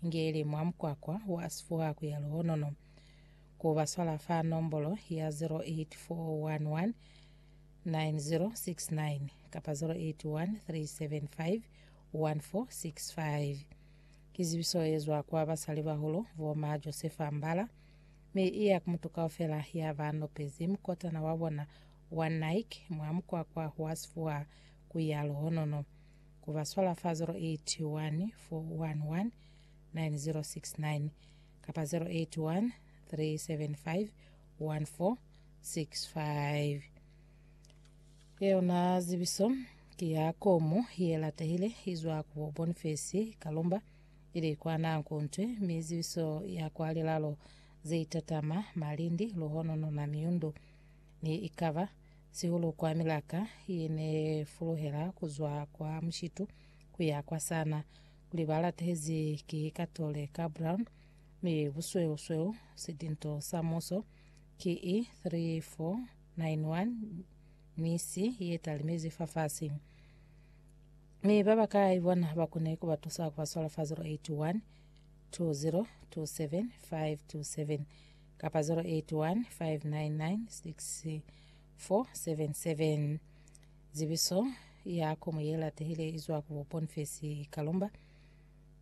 Ngeli mwa mukwakwa wa Asifuwa ku ya Luhonono, ku ba swala fa nombolo ya 0841190669 kapa 0813751465. Ki zibiso ye zwa kwa basalibahulu bo ma Josefa Mbala, mi i ya ku mutu kaufela ya ba nopezi mukotana wa bona wa Nike mwa mukwakwa wa Asifuwa ku ya Luhonono. Ku ba swala fa 081 411 9069 kapa 081 375 1465. Yona zibiso ki ya komu ye latehile izwa ku bo Bonifesi Kalumba ili kwa Nanku Ntwe mi zibiso ya kwa Lilalo ze itatama Malindi, Luhono, Nona, Miundu ni ikaba sihulu kwa milaka ye ne fuluhela ku zwa kwa mushitu ku ya kwa sana, kuli ba latehezi ki Katole ka Brown mi busweu-sweu sidinto sa muso ki i 3491 mi si ye talimezi fafasi. Mi ba bakai bona ba kone ku ba tusa ku ba swala fa 081 20 27 527. kapa 081 599 6477. Zibiso ya komo ye latehile izwa ku Boniface Kalumba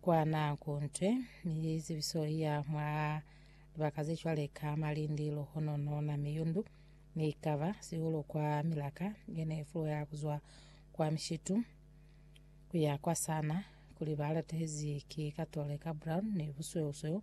kwa nako ntwe ni zibiso ya mwa libaka ze cwale ka Malindi, Lohonono na Miyundu ni kava sihulu kwa milaka yene ifulo ya kuzwa kwa Mishitu kuya kwa Sana kuli balatehezi ki Katole ka Brown ni busweusweu